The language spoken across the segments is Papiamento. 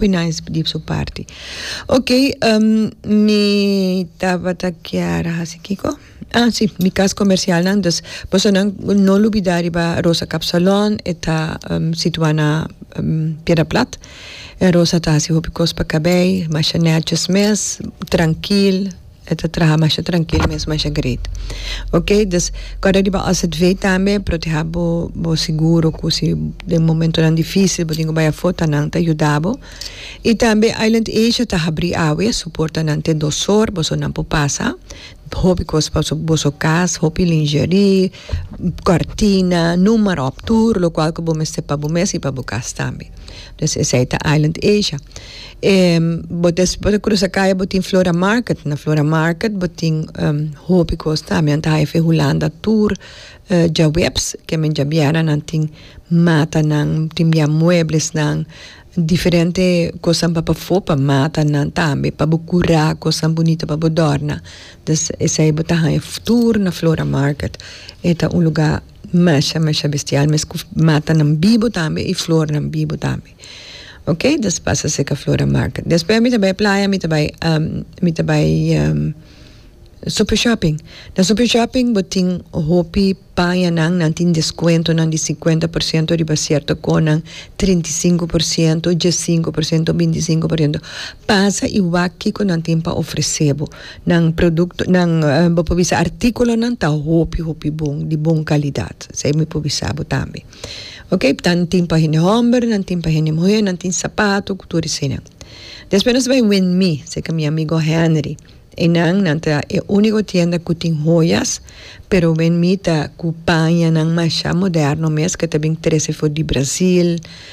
Pinaisp di su parti. Ok, mi tabata kier hasi kiko? Ah si, mi kas komersialnan, dus bosonan no lubidá riba Rosa Kapsalon, e ta situá na Piedra Plat. Rosa ta hasi hopi kos pa kabei, masha nètjes mes, trankil. E ta traha masha trankil mes masha great ok dus kòrda riba osset vee tambe proteha bo bo seguro ku si den momentonan dificil bo tin ku bai afó ta nan ta yuda bo i tambe Island Asia ta habri awe su porta nan te dos or boso nan por pasa hopi kos pa boso kas hopi lingerie kòrtina numerop tur lokual ku bo mester pa bo mes i pa bo kas tambe. Pues esei ta Island Asia. E bo des bo ta crusa calle bo tin Flora Market. Na Flora Market bo tin um hopi cos ta. Mian ta haya fe Hulanda Tour eh djaweps ke men djabiera nan tin matanan, tin bia mueblesnan, diferente cosnan pa pafo pa matanan tambe pa bo cura cosnan bunito pa bo dòrna. Des esei bo ta haya tour na Flora Market. E ta un lugar Masha masha bestial mes cu matanan bibu tambe y flornan bibu tambe ok dus pasa seca flora market despues mi ta bay playa mi ta bay mi ta bay super shopping na super shopping bo tin hopi pañanan nan tin descuentonan di cincuenta por ciento riba cierto conan trinta y cinco por ciento dies y cinco por ciento binti y cinco por ciento pasa y wak kico nan tin pa ofrece bo. Nan producto nan bo por bisa articulonan ta hopi hopi bon di bon calidad esey mi por bisa bo tambe ok nan tin pa hende homber nan tin pa hende muher nan tin sapato cu tur eseynan despues nos bai wenmi cerca mi amigo Henry eynan nan ta e unico tienda cu tin hoyas pero wenmi ta cu pañanan masha moderno mes ke ta bin trece for di Brasil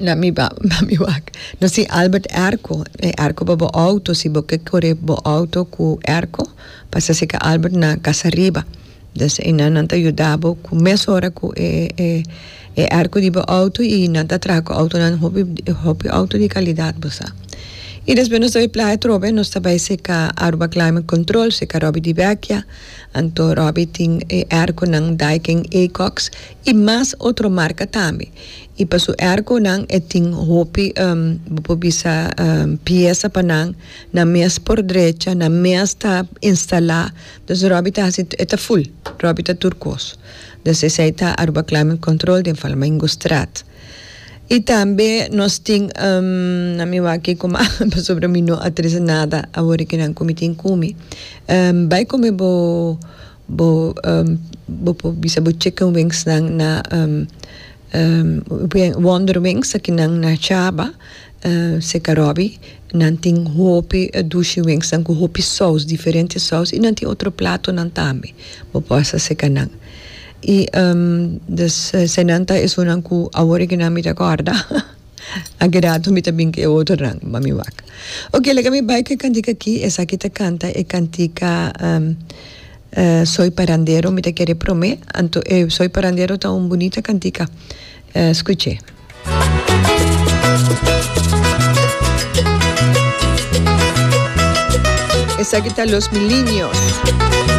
na mi ba na mi wak no si Albert erko e erko pa bo auto si bo ke kore bo auto ku erko pasa si ke Albert na kasa riba des e nan nan ta yuda bo ku mes ora ku e e e erko di bo auto i nan ta traha ku autonan hopi hopi auto di kalidat bo sa i despues nos ta bai playa trobe nos ta bai seka Aruba climate control seka Robby di Vecchia anto Robby tin e erkonan Dyken Acox i mas otro marka tambe. I pa su ergonan e tin hopi, bo por bisa, piesa pa nan, na mes por drecha, na mes ta instalá. Dus Robby ta hasi, e ta ful, Robby ta tur kos. Dus esei ta Aruba Climate Control den Flamingostraat. I tambe nos tin, na mi wak kuma, pasobra mi no a trese nada awor e kinan ku mi tin kumi, bai kome bo. Bo por bisa bo chicken wings nan na wonder wings aki nan na chaba seca robi nan tin hopi dushi wings nan cu hopi saus diferente saus y nan tin otro plato nan tambe bo por hasta seca nan y esnan ta esun nan cu awor nan mi ta corda. Aki rato mi ta bin ku e otro nan, ma mi wak. Oke, laga mi bai ku e kantika aki. Esaki ta kanta e kantika Soy parandero, mi ta kere promé. Anto e Soy parandero ta un bunita kantika. Skuche. Esaki ta Los mi liños.